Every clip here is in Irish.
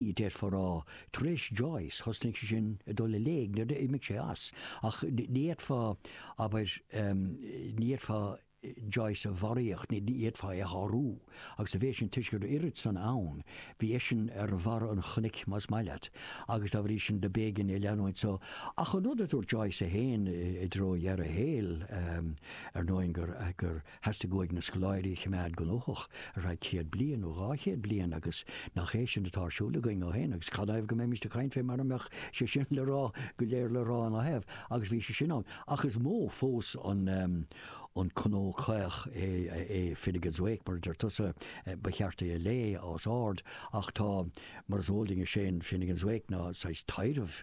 d'fhéadfá a rá. Tar éis Joyce, thosnaigh sé sin ag dul i léig, nuair a d'imigh sé as. Ach ní fhéadfá, abair, ní fhéadfá Joyce a bharraíocht, ní fhéadfá é a shárú. Agus sa mhéid sin, toisc go raibh oiread san ann, bhí eisean ar bharra an chnoic, más maith leat, agus dá bhrí sin do b'éigean é a leanúint. So, ach an rud a dúirt Joyce é féin i dtreo dheireadh a shaoil, ar ndóigh, gur, gur, Theastaigh uaidh na scoláirí a choimeád gnóthach ar feadh céad bliain nó dhá chéad bliain agus nach é sin atá ar siúl againn ó shin agus canathaobh go mbeimis ag caint fé mara mbeadh sé sin le rá go léir le rá ina thaobh agus bhí sé sin ann ach is mó fós an an cnó caoch é é Finnegans Wake mar a deir tusa ba cheart é a léamh os ard ach tá mar is eol duinn is é an Finnegans Wake ná saghas taidhreamh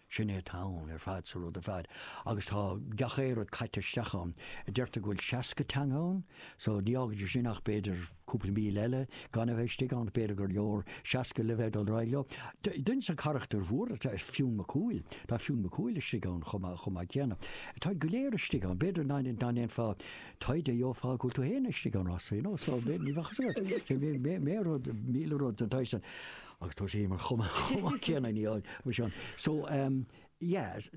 Sin é atá ann ar fad, sa rud ar fad. Agus tá gach aon rud caite isteach ann. Deirtear go bhfuil seasca teanga ann, so ní fhágann sé sin ach b'fhéidir cúpla míle eile gan a bheith istigh ann. B'fhéidir gur leor seasca le bheith ag dul ar aghaidh leo. Duine des na carachtair mhóra atá i Fionn Mac Cumhaill, tá Fionn Mac Cumhaill istigh ann chomh maith céanna. Táid go léir istigh ann. B'fhéidir dá ndéanfá taighde gheofá go bhfuil tú féin istigh ann, you know, so ní bheadh a fhios agat. Bheadh míle rud, míle rud den tsaghas san. agus tá sé mar chomh maith céanna ní ann mar sin. So yes,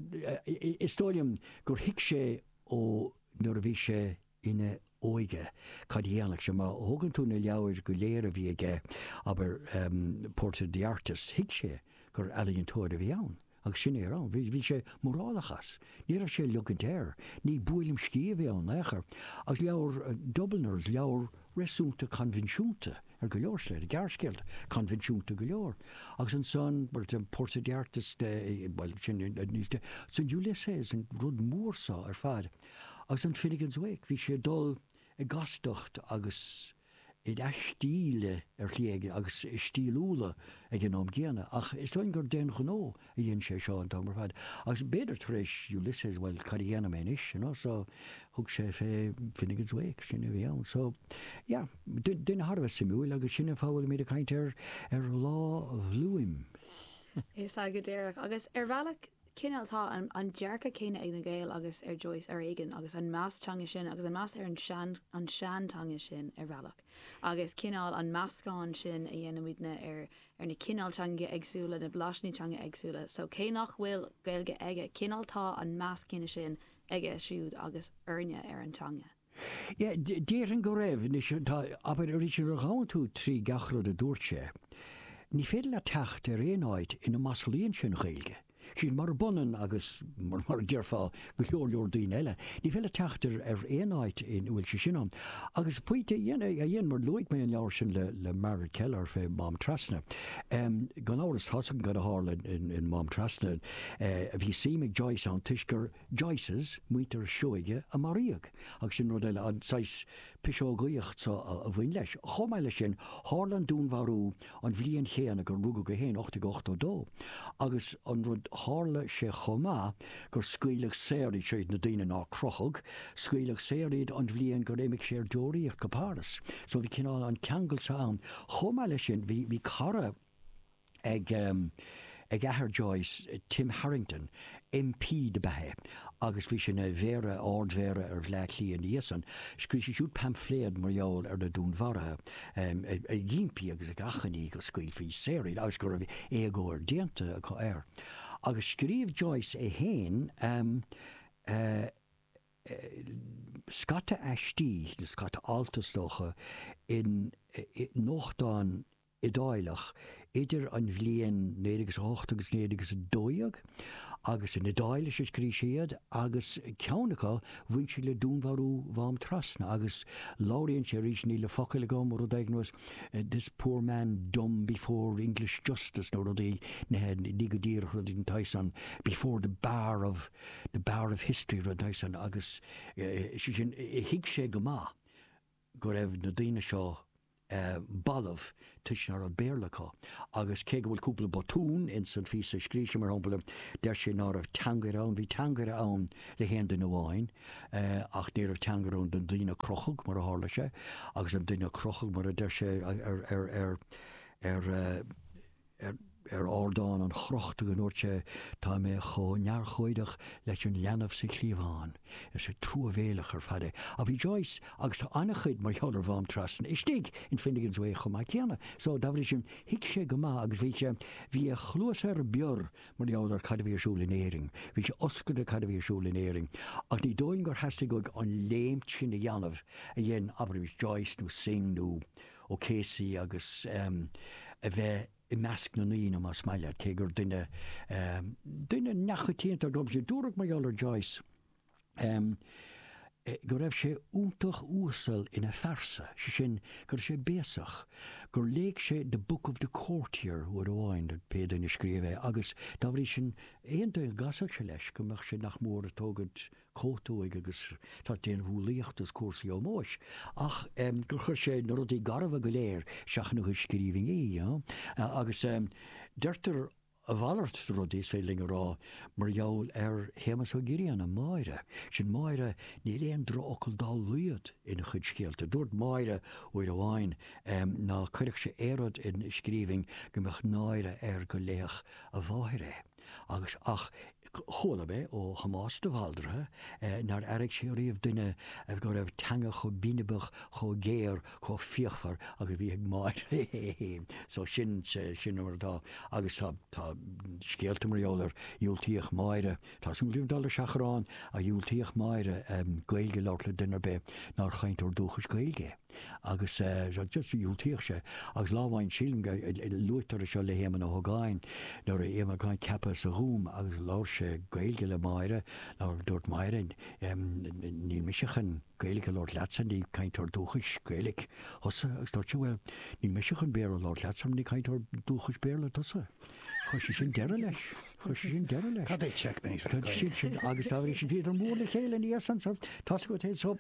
is dóigh liom gur thuig sé ó nuair a bhí sé ina óige cad a dhéanfadh sé. Má thógann tú na leabhair go léir a bhí aige, abair Portrait of the Artist, thuig sé gur ealaíontóir a bhí ann. Agus sin é a raibh ann. Bhí sé mórálach as. Ní raibh sé ag ligint air. Ní buaileam sciath a bhí ann ao'chor. Agus leabhar Dubliners, leabhar réasúnta coinbhinsiúnta ar go leor slite, gearrscéalta coinbhinsiúnta go leor. Agus ansan, mar a, Portrait of the Artist, bhuel, sin níos de, ansan Ulysses, an rud mór so ar fad. Agus an Finnegans Wake, bhí sé ag dul i gcastacht agus. i leath stíle ar shlí éigin agus is stíliúla ag an am gcéanna ach is dóigh gur d'aon ghnó a dhein sé seo an t-am ar fad agus b'fhéidir tar éis Ulysses bhuel cad a dhéanfaidh mé anois you know so thug sé fé Finnegans Wake sin a bhí ann so yeah duine thar a bheith suimiúil agus sin an fáth go bhfuilimíd ag caint ar ar Lá Bhloom. Is ea go díreach agus ar bhealach cineál tá an dearcadh céanna ag na Gaeil agus ar Joyce ar éigin agus an meas teanga sin agus an meas ar an seanteanga sin ar bhealach agus cineál an meascán sin a dhéanann muidne ar ar na cineál teangacha éagsúla na blasannaí teanga éagsúla so cé nach bhfuil Gaeilge aige cineál tá an meas céanna sin aige siúd agus orainne ar an teanga. Déarfainn go raibh. Anois, tá, abair, arís nuair a ghabhann tú trí gach rud a dúirt sé, ní féidir leat teacht ar aon áit ina maslaíonn sé an Ghaeilge. Sin mar a b'ionann agus, mar a déarfá, go leor leor daoine eile. Ní féidir leat teacht ar aon áit ina bhfuil sé sin ann. Agus pointe a dhein, mar luaigh mé an leabhar sin le Margaret Kelleher fé Mhám Trasna. Gan amhras, tá's againn cad a tharla in Mám Trasna. Bhí suim ag Joyce ann toisc gur. Joyces, muintir Seoighe a maraíodh, agus sin rud eile, an saghas piseogaíochta so a bhain leis. Chomh maith leis sin, tharla an dúnmharú an bhliain chéanna gur rugadh é féin, 1882, agus an rud, tharla sé chomh maith gur scaoileadh saor iad siúd, na daoine nár crochadh, scaoileadh saor iad an bhliain gur imigh sé ar deoraíocht go Páras. So bhí cineál an ceangal so ann. Chomh maith leis sin, bhí, bhí cara. ag, ag athair Joyce, Tim Harrington, MP dob ea é agus bhí sé ina Mhéara, Ard-Mhéara ar Bhleá Cliath ina dhiaidh san. Scríobh sé siúd paimfléad mar gheall ar na dúnmharaithe ag impí agus ag achainí go scaoilfí saor iad agus go raibh éagóir déanta acu air. Agus scríobh Joyce é féin scata aistí nó scata alt is dócha i nuachtán, Iodálach idir an bhliain naoi déag is a hocht agus naoi déag is a dó dhéag, agus in Iodáilis a scrígh sé iad, agus ceann acu bhain sé le dúnmharú Mhám Trasna, agus labhraíonn sé arís, níl na focail agam, rud éigin was this poor man dumb before English justice nó rudaí nithe, ní go díreach rud éigin den tsaghas san, before the bar of the bar of history rud den tsaghas san, agus sé sin, thuig sé go maith go raibh na daoine seo. balbh toisc ná raibh Béarla acu. Agus cé go bhfuil cúpla botún ins an phíosa a scrígh sé, mar shampla, deir sé ná raibh teangaire ann. Bhí teangaire ann le haon duine amháin, ach ní raibh teangaire ann don duine a crochadh, mar a tharla sé, agus an duine a crochadh, mar a deir sé ar, ar, ar, ar, ar, ar ardán an chrochta go ndúirt sé, tá mé chomh neamhurchóideach leis an leanbh sa chliabhán. Is é truamhéileach ar fad é. Ach bhí Joyce agus tá an-chuid mar gheall ar Mhám Trasna istigh in Finnegans Wake chomh maith céanna. So, dá bhrí sin, thuig sé go maith agus bhí sé, bhí a chluasa ar bior mar gheall ar cad a bhí ar siúl in Éirinn, bhí sé oscailte cad a bhí ar siúl in Éirinn. Ach ní dóigh liom gur theastaigh uaidh an léim sin a dhéanamh a dhein, abraimis, Joyce nó Synge nó. O'Casey agus a bheith i measc na ndaoine más maith leat, cé gur duine, duine neamhchoitianta ab ea é. Dúradh mar gheall ar Joyce go raibh sé iontach uasal ina phearsa, sé sin go raibh sé béasach, gur léigh sé The Book of the Courtier uair amháin, pé duine a scríobh é, agus dá bhrí sin aon duine a gcasfadh sé leis go mbeadh sé nach mór ag tógaint a cothuigthe agus tá déanamh umhlaíochta is cúrsaí ómóis ach gur chuir sé na rudaí garbha go léir isteach ina chuid scríbhinní agus deirtear a mhalairt de rudaí, is féidir linn a rá, mar gheall ar Shéamus Ó Grianna, Máire. Sin Máire, níl aon drochfhocal dá laghad ina chuid scéalta. Dúirt Máire uair amháin ná cuirfeadh sé aon rud in scríbhinn go mbeadh náire air go léifeadh a mháthair é. Agus, ach, chuala mé ó Thomás de Bhaldraithe nár airigh sé riamh duine go raibh teanga chomh binibeach, chomh géar, chomh fíochmhar agus a bhí ag Máire féin. So sin, sin mar atá. Agus tá, tá scéalta mar gheall ar, dhiúltaíodh Máire, tá súil agam dul ar seachrán, a dhiúltaíodh Máire Gaeilge a labhairt le duine ar bith nár chainteoir dúchais Gaeilge é. Agus dhiúltaíodh sé. Agus lá amháin, sílim go luaitear é seo le hÉamonn Ó hÓgáin, nuair a bhí Éamonn Ó hÓgáin ceaptha sa Ghúm agus labhair sé Gaeilge le Máire, dúirt Máire, níl mise chun Gaeilge a labhairt leatsa, ní cainteoir dúchais Gaeilge tusa. Agus dúirt sé, bhuel, níl mise chun Béarla a labhairt leatsa mar ní cainteoir dúchais Béarla tusa. Chuir sé sin deireadh leis. Chuir sé sin deireadh leis. Cad é checkmate? Agus dá bhrí sin, bhíodar mór le chéile ina dhiaidh san. So, tá's agat é. So,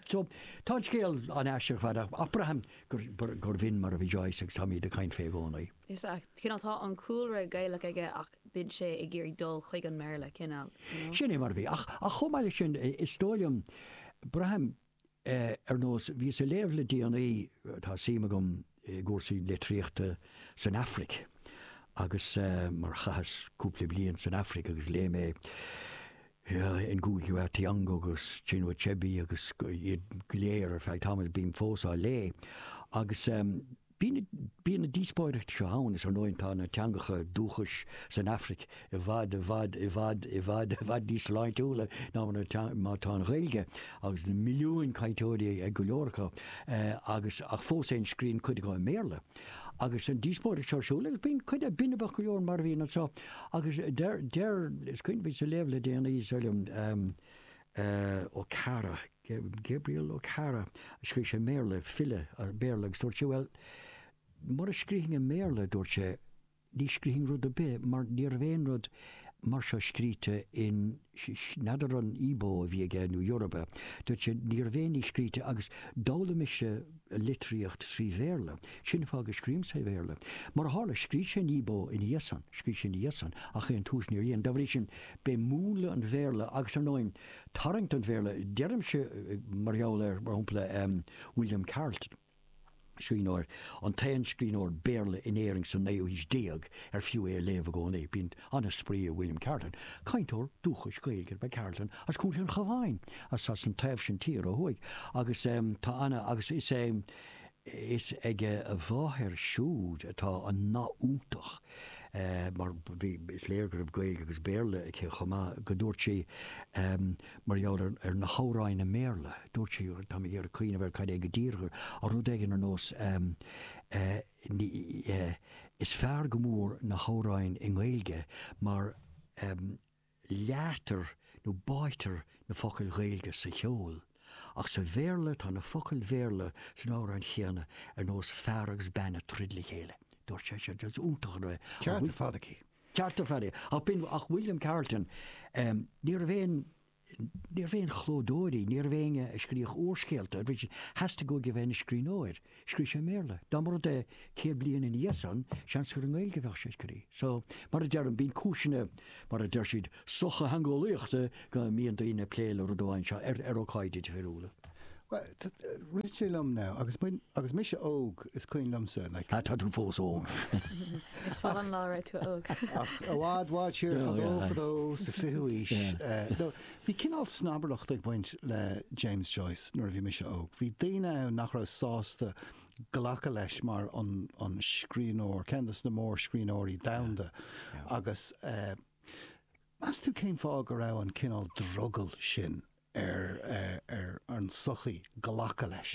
Tá an scéal an-aisteach ar fad ach braithim gurbh in mar a bhí Joyce agus táimíd ag caint fé i gcónaí. Is ea, cineál tá an cúlra Gaelach aige ach bíonn sé ag iarraidh dul chuig an mBéarla, cineál, you know. Sin é mar a bhí. Ach chomh maith leis sin, is dóigh liom, braithim ar nós, bhíos ag léamh le déanaí, tá suim agam, i gcúrsaí litríochta san Afraic agus mar chaitheas cúpla bliain san Afraic agus léigh mé Ngugi wa Thiong'o agus Chinua Achebe agus iad go léir ar feadh tamaill is bím fós á léamh agus bíonn na díospóireachtaí seo ann is ar ndóigh tá na teangacha dúchais san Afraic i bhfad, i bhfad, i bhfad, i bhfad, i bhfad níos sláintiúla ná mar atá, mar atá an Ghaeilge, agus na milliúin cainteoirí ag go leor acu, agus, ach fós fhéin scríonn cuid acu i mBéarla. Agus an díospóireacht seo ar siúl, agus bíonn cuid a, binibeach go leor mar a bhíonn anseo, agus deir, deir, is cuimhin liom bhíos ag léamh le déanaí, is dóigh liom, eh, Okara, Gabriel Okara a scríobh sé i mBéarla, file Béarla, agus dúirt sé, bhuel, mura scríobhainn i mBéarla, dúirt sé, Ní scrífinn rud ar bith mar ní raibh aon rud mar seo scríte in, n'fheadar an Igbo a bhí aige nó Yoruba, dúirt sé ní raibh aon ní scríte agus d'fhoghlaim mise litríocht trí Bhéarla, sin an fáth go scrím sa Bhéarla. Mar a tharla, scrígh sé in Igbo ina dhiaidh san, scrígh sé ina dhiaidh san ach ón tús níor dhein. Dá bhrí sin b'é múnla an Bhéarla agus ar ndóigh tarraingt an Bhéarla, deirimse mar gheall ar, mar shampla, William Carleton. scríbhneoir, an t-aon scríbhneoir Béarla in Éirinn sa naoú haois déag ar fiú é a léamh i gcónaí. Bíonn an-spraoi i William Carleton. Cainteoir dúchais Gaeilge ab ea Carleton as Contae an Chabháin, as as an taobh sin tíre ó thuaidh, agus tá ana, agus is é, is ag a mháthair siúd atá an nath iontach, mar bhí, is léir go raibh Gaeilge agus Béarla aici chomh maith, go ndúirt sí. Mar gheall ar na hamhráin i mBéarla, dúirt sí, táim ag iarraidh cuimhneamh air cad é go díreach, ah rud éigin ar nós ehm, eh, eh, is fearr go mór na hamhráin i nGaeilge mar, ehm, leáitear nó báitear na focail Ghaeilge sa cheol. Ach sa Bhéarla, tá na focail Bhéarla san amhrán céanna ar nós fear agus bean ag troid le chéile, dúirt sí, is iontach an rud é. An bhfuil fadhb aici? An ceart ar fad aici. Ach b'in é William Carleton. Ní raibh aon, ní raibh aon chlódóirí, ní raibh éinne a scríobhadh úrscéalta, theastaigh uaidh a bheith ina scríbhneoir. Scríobh sé i mBéarla. Dá mba rud é céad bliain ina dhiaidh san, seans gur i nGaeilge a bheadh sé ag scríobh. So, mar a deirim, bíonn cúiseanna, mar a deir siad, sochtheangeolaíochta ann go mbíonn daoine ag plé le rud amháin anseo ar ócáidí difriúla. Bhuel, rith sé liom now, agus muid, agus mise óg, is cuimhin liomsa, like. Ah, tá tú fós óg. Is fada an lá ó bhí tú óg. Ach i bhfad, bhfad siar fadó, fadó, sa 20ú aois, no, bhí cineál snobaireacht ag baint le James Joyce nuair a bhí mise óg. Bhí daoine ann nach raibh sásta glacadh leis mar an, an scríbhneoir, ceann de na mórscríbhneoirí domhanda agus eh, Meas tú cén fáth go raibh an cineál drogall sin ar an tsochaí glacadh leis?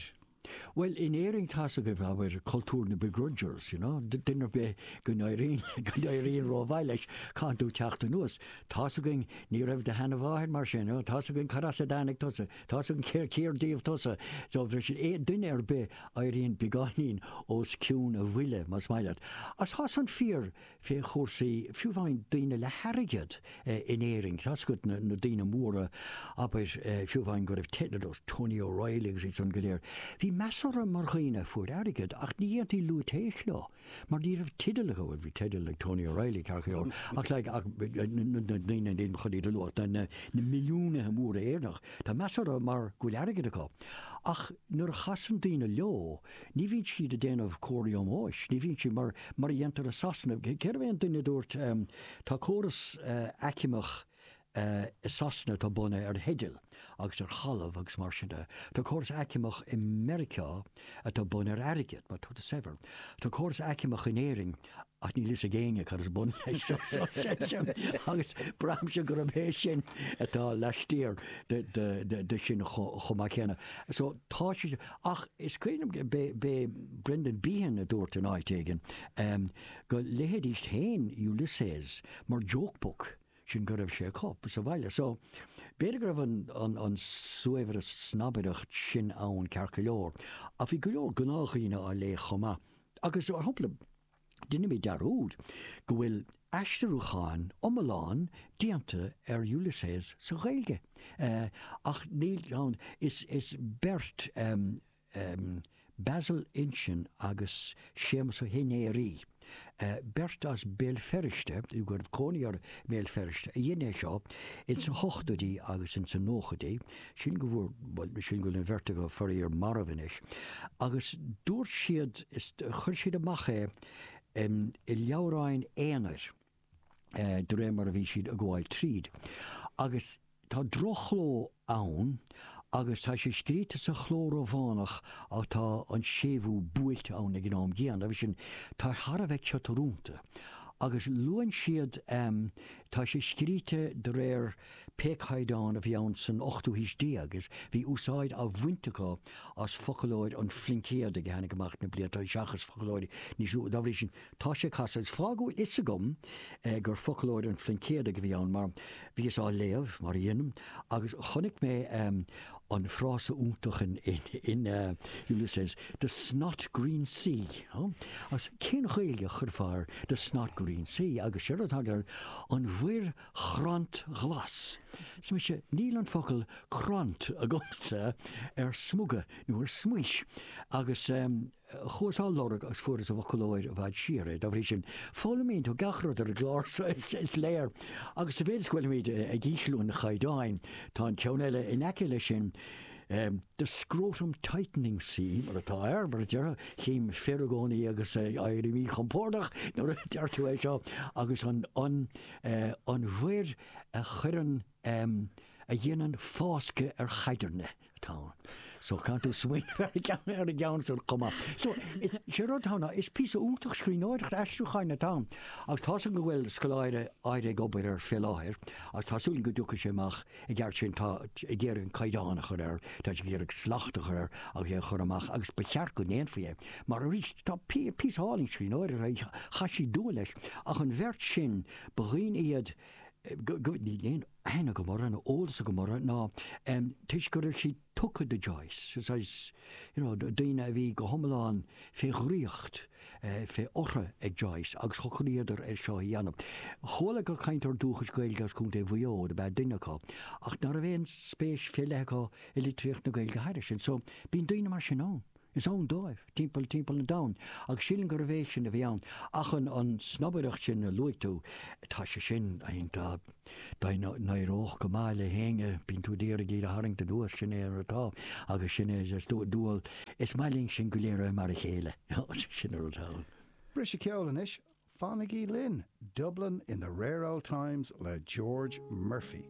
Bhuel, in Éirinn tá's againn, abair, cultúr na begrudgers, you know, duine ar bith go n-éiríonn ró-mhaith leis caithfidh tú teacht anuas, tá's againn ní raibh do sheana-mháthair mar sin, you know, tá's againn cad as a dtáinig tusa, tá's againn cér díobh tusa, so bheadh sin, aon duine ar bith a éiríonn beagáinín os cionn a bhuille, más maith leat. Ach tá san fíor féach cúrsaí, fiú amháin daoine le hairgead in Éirinn, tá fhios agat, na daoine móra, abair, fiú amháin go raibh daoine ar nós, Tony O'Reilly agus iad san go léir, bhí meas orthu mar dhaoine a fuair airgead ach ní dhéantaí lúitéis leo mar ní raibh teideal acu, bhuel bhí teideal ag Tony O'Reilly ceart go leor ach like ach na daoine ní maith liom iad a lua ach na milliúnaithe móra Éireannach, tá meas orthu mar go bhfuil airgead acu ach nuair a chasann daoine leo, Ní bhíonn siad ag déanamh comharthaí ómóis, ní bhíonn siad, mar a dhéantar i Sasana. Cérbh é an duine a dúirt, tá córas aicmeach i Sasana atá bunaithe ar theidil agus ar thalamh agus mar sin de. Tá córas aicmeach i Meiriceá atá bunaithe ar airgead, má tá tú saibhir. Tá córas aicmeach in Éirinn Ach níl fhios ag éinne cad is bun leis seo agus braithimse gurb é sin atá laistiar de sin chomh maith céanna. So tá sé ach is cuimhin liom ab é Brendan Behan a dúirt in áit éigin go léifidís féin Ulysses mar joke book, sin go raibh sé acu sa bhaile. So b'fhéidir go raibh an saghas snobaireacht sin ann ceart go leor ach bhí go leor gnáthdhaoine á léamh chomh maith. Agus a chúpla, déanaimid dearúd go bhfuil aistriúchán iomlán déanta ar Ulysses sa Ghaeilge. Ach níl ann is is beirt, Basil Uinseann agus Séamus Ó hInnéirí, beirt as Béal Feirste, nó go raibh cónaí orthu i mBéal Feirste, a dhein é seo ins na hochtóidí agus ins na nóchaidí. sin go bhfuair, bhuel, sin go bhfuil an bheirt acu faraor marbh anois. Agus dúirt siad, is, chuir siad amach é em i leabhráin aonair eh de réir mar a bhí siad a' gabháil tríd. Agus tá droch-chló ann agus tá sé scríte sa chló Rómhánach ach tá an séimhiú buailte ann ag an am céanna agus sin, tá sé thar a bheith ciotúrúnta. Agus luann siad em tá sé scríte de réir, Pé caighdeán a bhí ann san ochtú haois déag is bhí úsáid á bhaint acu as foclóir an Phluincéadaigh a tháinig amach an bhliain áirithe sin seachas foclóirí níos nua. Dá bhrí sin tá sé casta. Is fág go bhfuil fhios agam gur foclóir an Phluincéadaigh a bhí ann mar bhíos á léamh, mar a dhéanaim, agus chonaic mé an frása iontach in Ulysses, the snot-green sea. Agus cén Ghaeilge a chuirfeá ar the snot-green sea agus séard atá acu ná an mhuir chrantghlas. Sea, muise, níl an focal crant agamsa ar smuga nó ar smaois, agus chuas á lorg agus fuaireas i bhfoclóir i bhfad siar é. Dá bhrí sin, foghlaimíonn tú gach rud ar an gclár so, is léir. Agus sa mhéid is go bhfuilimíd ag ísliú an chaighdeáin, tá an ceann eile in aice leis sin, The Scrotum Tightening Sea, mar atá air, mar a déarfá, chím fir i gcónaí agus éiríd míchompordach nuair a deir tú é seo, agus an, an mhuir a chuireann, a dhéanann fáscadh ar chaidirne atá ann. So is féidir leat smaoineamh ar an gceann, ar an gceann san chomh maith. So is, sé rud atá ann ná, is píosa iontach scríbhneoireachta, aistriúcháin atá ann. Agus tá súil agam go bhfuil scoláire, óg ag obair air fé láthair agus tá súil agam go dtiocfaidh sé amach I gceart sin tá sé ag iarraidh an caighdeán a chur air, tá sé ag iarraidh slacht a chur air agus é a chur amach agus ba cheart go ndéanfaí é mar arís tá píosa álainn scríbhneoireachta aige, chaith siad dua leis ach an bheirt sin ba dhaoine iad níl aon aithne agam orthu nó eolas agam orthu ná toisc go raibh siad tugtha do Joyce, is as, you know, daoine a bhí go hiomlán fé dhraíocht, fé ortha ag Joyce agus socraíodar air seo a dhéanamh. Chuala gur cainteoir dúchais Gaeilge as Contae Mhaigh Eo ab ea duine acu ach ná raibh aon spéis fé leith acu i litríocht na Gaeilge thairis sin. So, bíonn daoine mar sin ann. Is ann dóibh, timpeall timpeall an domhain, agus sílim gurbh é sin a bhí ann. Ach an snobaireacht sin a luaigh tú, tá sé sin, I mean, tá, dá n-éireodh go maith le héinne, bíonn tú ag iarraidh iad a tharraingt anuas, sin é mar atá, agus sin é is dual, is maith linn sin go léir a bheith mar a chéile, sin an rud ann. Briseadh ceoil anois, fanaigí linn, Dublin in the Rare Old Times le George Murphy.